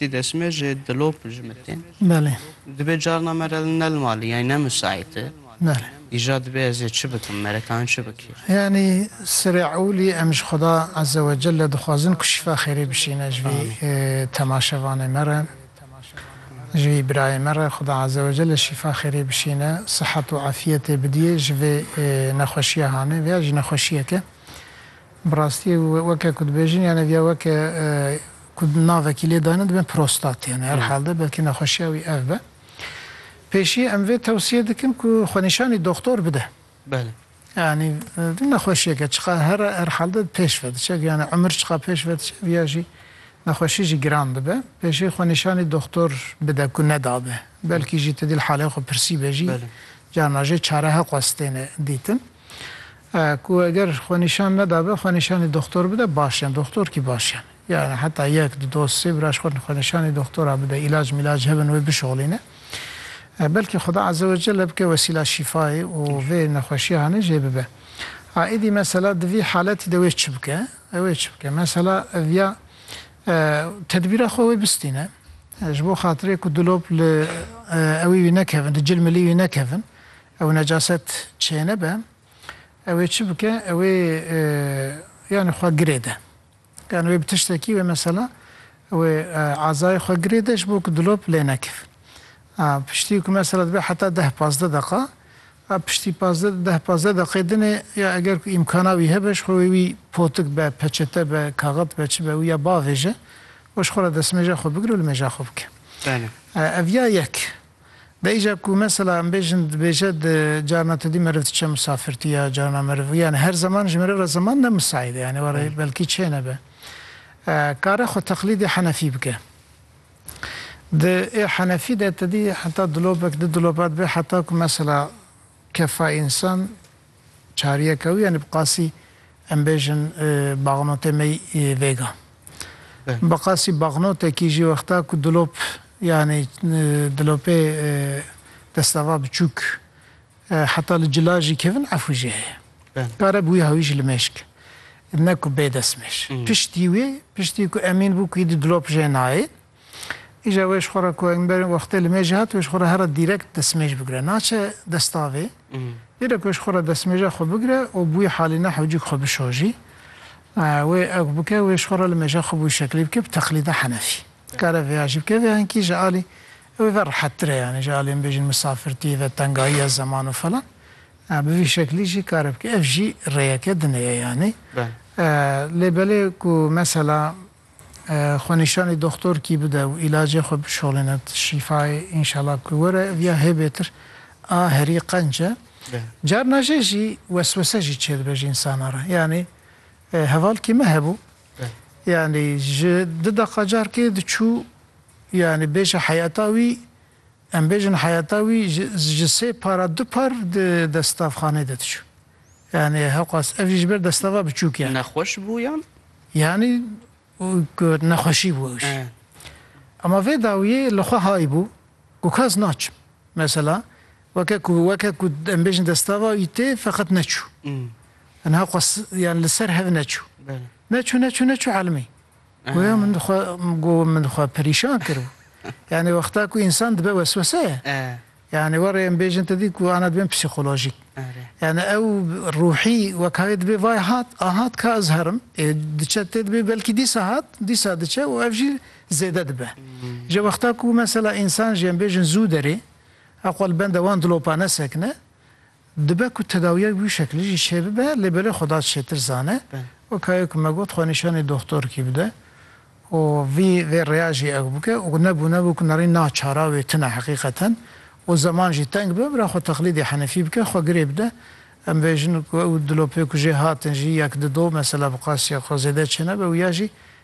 Ti dest me ji dilop jimite. Belê. Dibe carna me re ne li malê yanî ne misaît e. Belê. Îja dibe ez ê çi bikim me re kan çi bikê. Yanî serê ewlî em ji Xweda Eze we Celle dixwazin ku şîfa xêrê bişîne ji vî temaşevanê me re, ji vî birayê me re Xweda Eze we Celle şîfa xêrê bişîne, sihet û efîyetê bidîyê ji vê nexweşîya hanê. Vêya jî nexweşîyek e. Bi rastî weke ku dibêjin yan ev ya weke ku navekî lê dayne dibe prostat yanî her halde belkî nexweşiya wî ev be. Pêşî em vê tewsiye dikin ku xwenîşanî doxtor bide. Belê. Yanî du nexweşiyeke çiqas her her halde pêş ve diçe ev yanî umir çiqas pêş ve diçe ev ya jî nexweşî jî giran dibe. Pêşî xwenîşanî doxtor bide ku nedabe. Belkî jî tu dîl halê xwe pirsîbe jî carna jê çare heqwestêne dîtin. Ku eger xwenîşan nedabe, xwenîşanî doxtor bide baş e. Doxtor kî baş e. Yanî heta yek, di dos, sê biraj xwe xwenîşanî doxtora bide, îlac mîlac hebin wê bişoxlîne. Belkî Xuda Eze we Celle bike wesîla şîfayê û vê nexweşiya hanê jê bibe. A êdî mesela di vî haletî de wê çi bike? Ew ê çi bike? Mesela ev ya tedbîra xwe wê bistîne. Ji bo xatirê ku dilop li ewî wî nekevin, di cilmilî wî nekevin. Ew necaset çênebe ew ê çi bike ew ê yanî xwe girê de. Yanî wê bi tiştekî wê mesela ew ê azayê xwe girê de ji bo ku dilop lê nekevin. A piştî ku mesela dibe heta deh pazdeh deqa a piştî pazdeh deh pazdeh deqê din ê ya eger ku îmkana wî hebe ji xwe wê wî potik be, peçete be, kaxit be çi be wî ya biavêje û ji xwe re destmêja xwe bigire û li mêja xwe bike. Belê. Ev ya yek. Bêyîca ku mesela em bêjin dibêje di carna tu dî meriv diçe misafirtî ya carna meriv yanî her zeman ji meriv re zeman ne misaîd e yanî were belkî çê nebe kare xwe teqlîdê henefî bike. Di ê henefî de tu dî heta dilopek di dilopa dibe heta ku mesela kefa însan Çariyeke wî yanî bi qasî em bêjin baxnotê me yî vêga. Bi qasî baxnotekî jî wexta ku dilop yanî dilopê destava biçûk heta li cila jî kevin efû jî heye. Kare bi wî hawî jî li mêşk ne ku bê destmêş. Piştî wê piştî ku emîn bû ku îdî dilop jê nayê Îja wê ji xwe re ku em berê wextê li mêjê hat wê ji xwe re here dîrekt destmêj bigire. Naçe destavê. Lêde ku wê ji xwe re destmêja xwe bigire û bi wî halî ne hewcîk xwe bişojî. Wê ew ku bike wê ji xwe re li mêja xwe bi wî şeklî bike bi teqlîda henefî. Dikare vêya jî bike vêya hinkî ji alî ew ê ve rehettir e yanî ji alî em bêjin misafir tu yê ve tengayî ye zeman û falan. Bi vî şeklî jî kare bike. Ev jî rêyeke din ê yanî. Lê belê ku mesela Xwenîşanê doxtor kî bide û îlacê xwe bişolîne şîfayê înşallah ku were ev ya hê bêtir a herî qenc e. Carna jê jî weswese jî çêdibe ji însanan re. Yanî heval kî me hebû yanî ji di deqa carkê diçû yanî bêje heyeta wî em bêjin heyeta wî ji sê para du par di destavxanê de diçû. Yanî hewqas ev jî ji ber destava biçûk e. Nexweş bû yan? Yanî ku nexweşî bû ewş. Ema vê dawiyê li xwe hay bû ku kas naçim. Mesela weke ku weke ku em bêjin destava wî tê feqet neçû. Yanî hewqas yan li ser hev neçû. Neçû neçû neçû elmî. Goya min xwe got min xwe perîşan kiribû. Yanî wexta ku însan dibe wesweseye. Yanî warê em bêjin tu dî ku ana dibin psîkolojîk. Yanî ew ruhî wek hayê dibê vay hat, a hat ka ez herim. Ê diçe tê dibê belkî dîsa hat, dîsa diçe û ev jî zêde dibe. Ji wexta ku mesela însan jî em bêjin zû derê, eqwa li benda wan dilopane sekine. Dibe ku tedawiyek bi wî şekilî jî çêbibe lê belê xwe da çêtir zane. Weka ye ku me got xwe nîşanî doxtorkî bide û vî vê rêya jî ew bike û ne bûne bû ku nerî na çara wê tune heqîqeten û zeman jî teng be bira xwe teqlîdê Henefî bike xwe girê bide. Em bêjin ku ew dilopê ku jê hatin jî yek di do mesela bi qasîya xwe zêde çênebe û ya jî